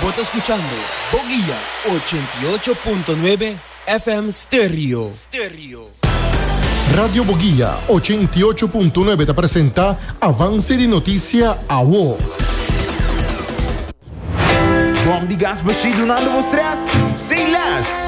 Bo ta skuchando Boguia ochenta i ocho punto nuebe FM Stereo. Radio Boguia ochenta i ocho punto nuebe ta presenta Avance di Noticia Awo. Bom di gas machine dunando bo stress sin les.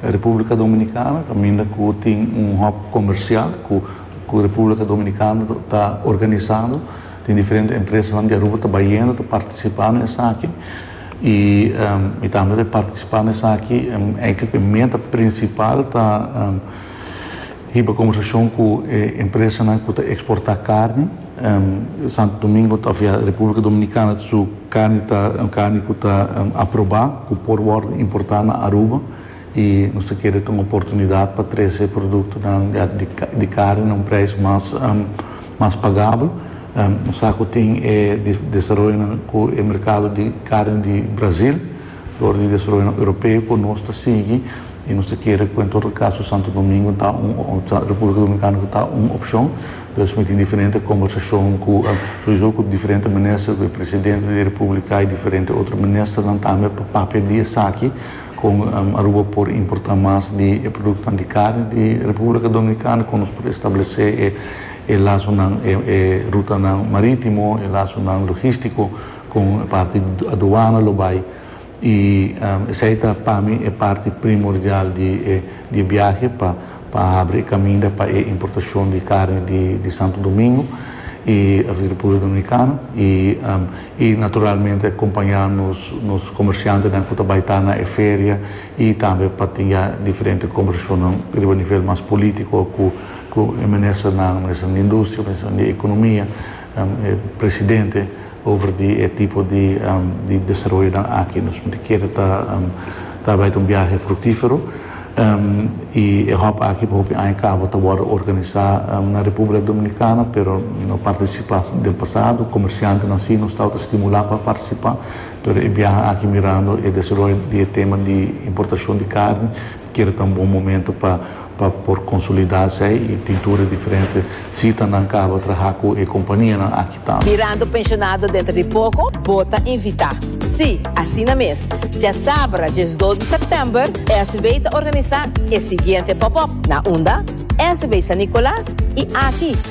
Republica Dominicana caminda cu tin un hub comercial cu Republica Dominicana ta organizando. Tin diferente empresanan di Aruba ta bayendo ta participa na esaki y mi tambe ta participa na esaki. Enclic e meta principal ta. Hiba conversacion cu e empresanan cu ta exporta carni. Santo Domingo tafia Republica Dominicana su carni ta carni cu ta aproba cu por wordo importa na Aruba y nos ta kere ta un oportunidad pa trece productonan ya di carni na un prijs mas mas pagabel. Nos sa cu tin e desaroyonan cu e mercado di carni di Brazil. Dor di desaroyonan europeo ku nos ta sigui i nos ta kere ku en tur kaso Santo Domingo ta un ta Republika Dominikana ku ta un opshon. Por eso mi tin diferente kombersashon ku souizo ku diferente minister, ku e presidente di Republika i diferente otro ministernan tambe pa papia di esaki kon Aruba por importa mas di e produktonan di karni di Republika Dominikana, kon nos por establesé e lasonan e rutanan marítimo, e lasonan logístiko. Con e parti aduana lo bay y esey ta pa mi e parti primordial di e biahe pa a habri e caminda pa e importacion di carni di Santo Domingo y di Republica Dominicana y naturalmente acompaña nos comerciantenan cu ta bay ta na e feria y tambe pa tin ya diferente conversacionnan riba nivel mas politico cu e ministernan, minister di industria, minister di economia. E presidente over di e tipo di desaroyonan aki. Nos mester keda ta ta bai ta un biahe fruktifero i e hòp aki pa hopi aña kaba ta wòrdu organisá na Republika Dominikana pero no partisipá den pasado. Komersiantenan si nos tabata stimulá pa partisipá pero e biaha aki mirando e desaroyo di e tema di importashon di karni. Kere ta un bon momento pa pa por consolida esey y pintura diferente sitanan caba traha cu e companianan aki tambe. Mirando pensionado dentro di poco bo ta invita. Si, asina mes. Djasabra djes dos di september SB ta organisa e siguiente pop-up na unda? SB San Nicolas y aki.